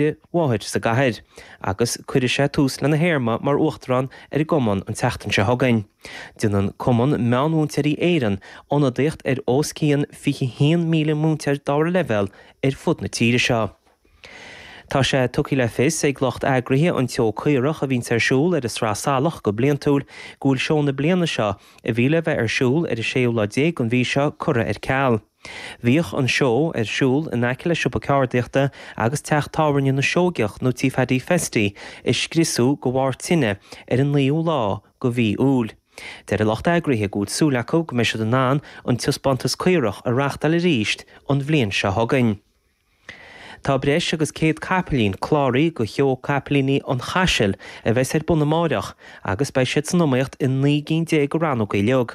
a mháthair sa gcathair agus cuirfidh sé tús lena théarma mar uachtarán ar an gcumann an tseachtain seo chugainn. Déanann Cumann Meánmhúinteoirí Éireann ionadaíocht ar os cionn 21,000 múinteoir dara leibhéal ar fud na tíre seo. Tá sé tugtha le fios ag lucht eagraithe an tSeó Caorach a bhíonns ar siúl ar an tSraith Salach go bliantúil go bhfuil seó na bliana seo, a bhí le bheith ar siúl ar an séú lá déag den mhí seo, curtha ar ceal. Bhíodh an seó ar siúl in aice le siopa ceardaíochta agus teach tábhairne na Seoigeach nó tí Phaddy Festy a scriosadh de bharr tine ar an 9ú lá de mhí Iúil. Deir an lucht eagraithe go bhfuil súil acu go mbeidh siad in ann an taispeántas caorach a reachtáil arís an bhliain seo chugainn. Tá breis agus céad capaillín cláraithe do Sheó Capaillíní an Chaisil a bheas ar bun amáireach agus beidh siad san iomaíocht i naoi gcinn déag de rannógaí uilig.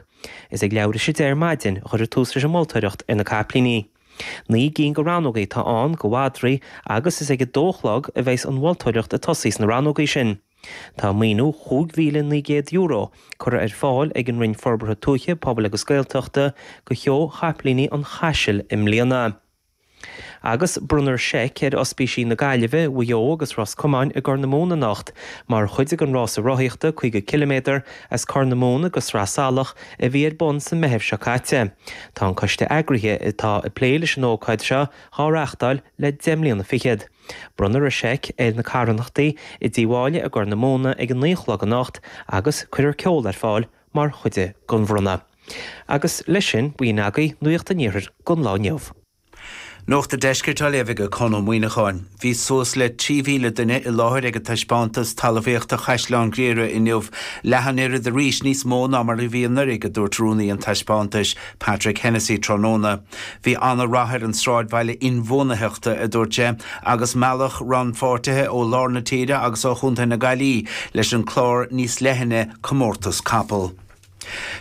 Is ag leathuair théis a deich ar maidin a chuirfear tús leis an moltóireacht ar na Capaillíní. Naoi gcinn de rannógaí atá ann do mhadraí agus is ag a dó a chlog a bheas an mholtóireacht ag tosaí sna rannógaí sin. Tá maoiniú €5,900 curtha ar fáil ag an Roinn Forbartha Tuaithe, Pobail agus Gaeltachta do Sheó Chapaillíní an Chaisil i mbliana. Agus bronnfar seic ar Ospísí na Gaillimhe, Mhaigh Eo agus Ros Comáin i gCorr na Móna anocht mar chuid den rása rothaíochta 50 ciliméadar as Corr na Móna go Sraith Salach a bhí ar bun sa Meitheamh seo caite. Tá an coiste eagraithe atá ag plé leis an ócáid seo dhá reachtáil le deich mbliana fichead. Bronnfar an seic ar na carthanachtaí i dTigh Mháille i gCorr na Móna ag a naoi a chlog anocht agus cuirfear ceol ar fáil mar chuid den bhronnadh. Agus leis sin, b'in agaibh nuaíocht an Iarthair don lá inniu. Nuacht an Deiscirt á léamh ag Conn Ó Muíneacháin. Bhí suas le 3,000 duine i láthair ag an taispeántas talmhaíochta Chaisleán Ghriaire inniu, leath an oiread arís níos mó ná mar a bhí anuraidh a dúirt rúnaí an taispeántais, Patrick Hennessy tráthnóna. Bhí an-rath ar an sráidbhaile inbhuanaitheachta, a dúirt sé, agus mealladh rannpháirtithe ó lár na tíre agus ó Chontae na Gaillí leis an clár níos leithne Comórtas Capall.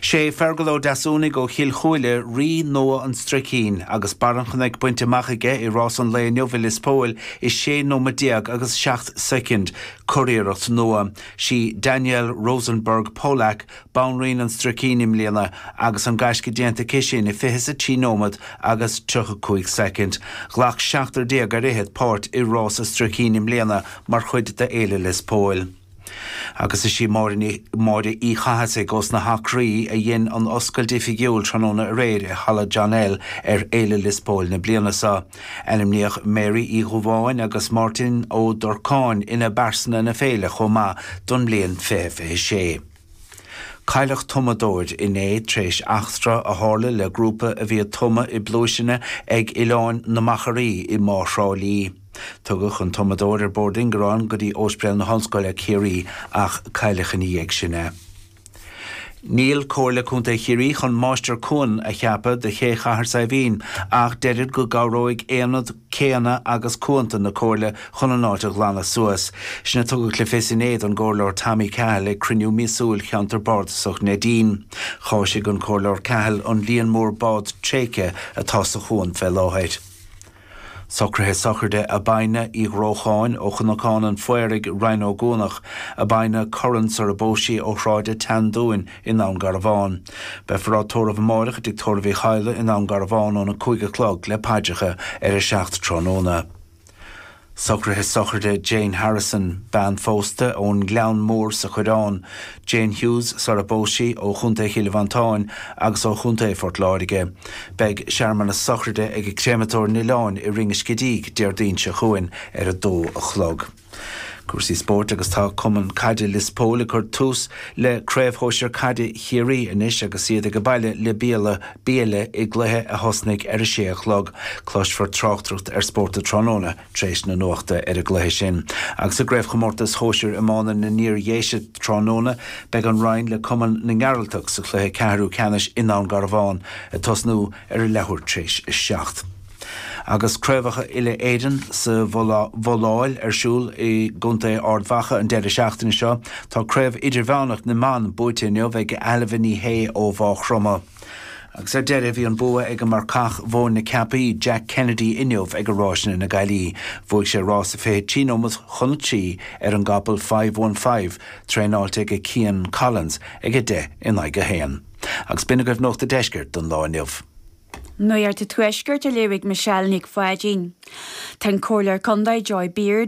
Sé Feargal Ó Deasúnaigh ó Chill Chúile rí nua an Stricín agus barr an chnoic bainte amach aige i rás an lae inniu i Lios Póil i 16 nóiméad agus 7 soicind, curiarracht nua. Sí Danielle Rosenberg Polack Banríon an Stricín i mbliana agus an gaisce déanta aici sin i 23 nóiméad agus 35 soicind. Ghlac seachtar déag ar fhichead páirt i Rása Stricín i mbliana mar chuid de Fhéile Lios Póil. Agus is í Máire Uí Chathasaigh ós na hAcraí a dhein an oscailt oifigiúil tráthnóna aréir i Halla John L ar Fhéile Lios Póil na bliana seo. Ainmníodh Mary Uí Dhubháin agus Máirtín Ó Durcáin ina bPearsana na Féile chomh maith don mbliain 2026. Cailleadh tumadóir inné tar éis eachtra a tharla le grúpa a bhí ag tumadh i bpluaiseanna ag Oileáin na Machairí i mBá Thrá Lí. Tugadh an tumadóir ar bord ingearáin go dtí Óspidéal na hOllscoile, Ciarraí, ach cailleadh ina dhiaidh sin é. Níl Comhairle Contae Chiarraí chun Máistir Cuan a cheapadh do Ché Chathair Saidhbhín ach deirid go gcabhróidh Aonad céanna agus cuanta na Comhairle chun an áit a ghlanadh suas. Sin a tugadh le fios inné don gComhairleoir Tommy Cahill ag cruinniú míosúil Cheantar Bardasach Neidín. Chásaigh an Comhairleoir Cahill an líon mór bád tréigthe atá sa chuan fé láthair. Socruithe sochraide Abina Uí Dhrócháin ó Chnocán an Phaoraigh, Rinn Ó gCuanach, Abina Curran sar a bpós sí, ó Shráid an tSeandúin, i nDún Garbhán. Beifear á tórramh amáireach i dTigh Tórraimh Uí Chadhla i nDún Garbhán óna cúig a chlog le paidreacha ar a seacht tráthnóna. Socruithe sochraide Jane Harrison, bean phósta ón nGleann Mór sa Choireán, Jane Hughes sar a bpós sí, ó Chontae Chill Mhantáin agus ó Chontae Phort Láirge. Beidh searmanas sochraide ag an gcréamatóir an Oileáin i Rinn an Scidígh Déardaoin seo chugainn ar a dó a chlog. Cúrsaí spóirt agus Tá Cumann Caide Lios Póil ag cur tús le Craobh Shóisir Caide Chiarraí anois agus iad age baile le Biaille i gcluiche a thosnaigh ar a sé a chlog. Cloisfear tráchtaireacht ar Spórt an Tráthnóna tar éis na nuachta ar an gcluiche sin. Agus i gCraobhchomórtas Shóisir Iomána na nIar-Dhéise tráthnóna, beidh an Rinn le Cumann na nGearaltach sa chluiche ceathrú ceannais i nDún Garbhán, ag tosnú ar a leathuair tar éis a seacht. Agus Craobhacha Uile-Éireann sa bhabhláil ar siúl i gContae Ard Mhacha an deireadh seachtaine seo, tá Craobh Idirmheánach na mBan buaite inniu ag Ailbhe Ní Shé ó Mhaigh Chromtha. Agus ar deireadh, bhí an bua age marcach Mhóin na Ceapaí, Jack Kennedy inniu age Ráiseanna na Gaillimhe. Bhuaigh sé rás a 20 trí nóiméad chun a trí ar an gcapall Five One Five, traenáilte age Cian Collins, ag a deich in aghaidh a haon. Agus b'in agaibh Nuacht an Deiscirt don lá inniu. Nuacht an Tuaiscirt a léirigh Michelle Nic Pháidín. Tá an Comhairleoir Contae Joy Beard,